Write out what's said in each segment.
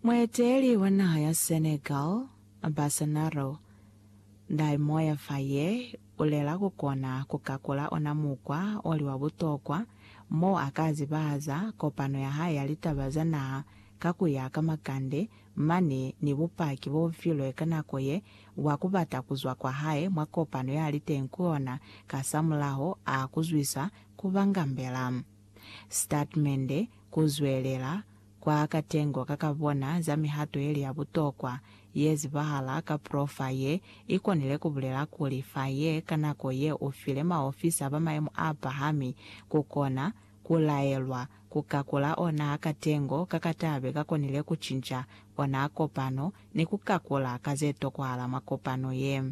Mueteli wa naha ya Senegal, Bassnaro Dai Moya Faye ulela kukona kukakula ona mukwa oli wa butokwa mo aka zibahaza kopano ya hae ya litaba za naha ka kuya ka makande mane ni bupaki bobufilwe ka nako ye bwa kubata kuzwa kwa hae mwa kopano yaliteng ku yona kasamulaho a kuzwisa kubangambela Statimende ku zwelela kwa katengo ka ka bona za mihato yeli ya butokwa ye zibahala ka profa ye i konile ku bulela kuli fa ye ka nako ye u file maofisa ba mayemo a pahami ku kona ku laelwa ku kakula ona katengo ka ka tabe ka konile ku cinca ona kopano ni ku kakula ka ze tokwahala mwa kopano ye.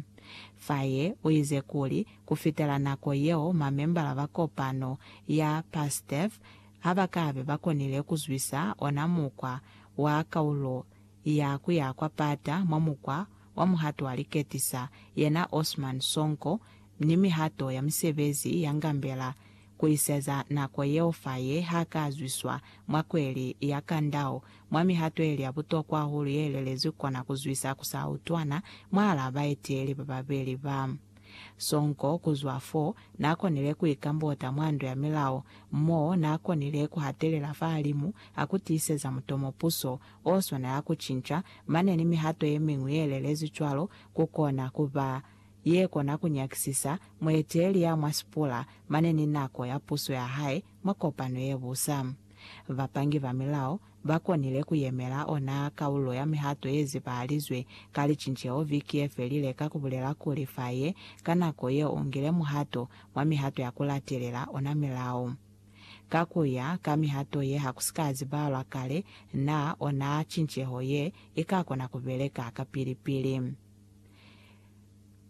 Fa ye u ize kuli, Ku fitela nako yeo, mamembala ba kopano ya PASTEF ha ba ka be ba konile ku zwisa ona mukwa wa kaulo ya ku ya kwa pata mwa mukwa wa muhato wa liketisa, yena Osman Sonko, ni mihato ya misebezi ya Ngambela ku iseza nako yeo faye ha ka zwiswa mwa kweli ya Kandao, mwa mihato ye li ya butokwa hahulu ye lelezwi kona ku zwisa ku sa utwana mwahalaa baeteli ba babeli ba Sonko kuzwa fo, naakonile kuikambota mwa Ndo ya Milao, mo naakonile kuhatelela fahalimu hakutiiseza mutomo puso oswana ya kucinca, mane ni mihato yemiñwi yelelezi cwalo, kukona kuba yekona kunyakisisa mueteeli ya mwa sipula mane ni nako ya puso yahae mwa kopano yebusa. Bapangi ba milao ba konile ku yemela ona kaulo ya mihato ye zibahalizwe ka licinceho viki ye felile ka ku bulela kuli fa ye ka nako yeo u ngile muhato mwa mihato ya ku latelela ona milao. Ka ku ya ka mihato ye ha ku si ka zibahalwa kale naa ona cinceho ye i ka kona ku beleka kapili-pili.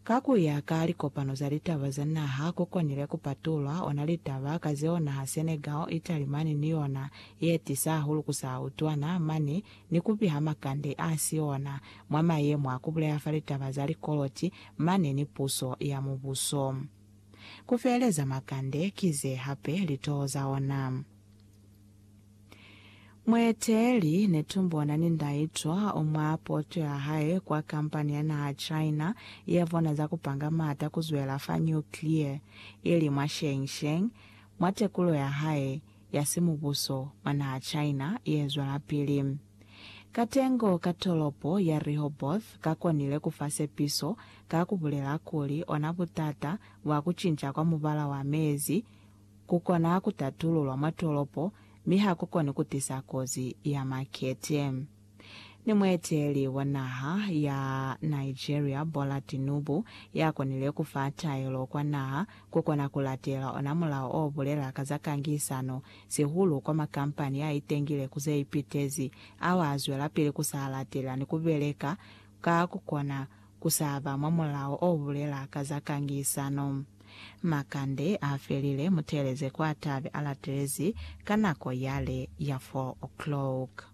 Ka ku ya ka likopano za litaba za naha, ku konile ku patulwa ona litaba ka zeo naha Senegal, Italy mani ni yona ye tisa hahulu ku sa utwana mani ni ku piha makande a si ona mwa mayemo a ku buleha fa litaba za likoloti mani ni puso ya mubuso. Ku feeleza makande ki ze hape litoho za ona. Mueteeli netumbona ni ndaitwa o mwa poto ya hae kwa kampani ya naha China ya bona za ku panga maata ku zwela fa nuclear, ili mwa Shengsheng, mwa tekulo ya hae ya simubuso mwa naha China ye zwelapili. Katengo ka tolopo ya Rehoboth ka konile ku fa sepiso ka ku bulela kuli ona butata bwa ku cinca kwa mubala wa mezi, Ku kona ku tatululwa mwa tolopo mi ha ku koni ku tisa kozi ya makete. Ni mueteleli wa naha ya Nigeria Bola Tinubu ya konile ku fa taelo kwa naha ku kona ku latela ona mulao o bulela ka za kangisano, sihulu kwa makampani a itengile ku ze ipitezi ao a zwelapili ku sa latela ni ku beleka ka ku kona Ku sa ba mwa mulao o bulela ka za kangisano. Makande a felile, mu teeleze kwa ta be a latelezi ka nako yale ya 4 o'clock.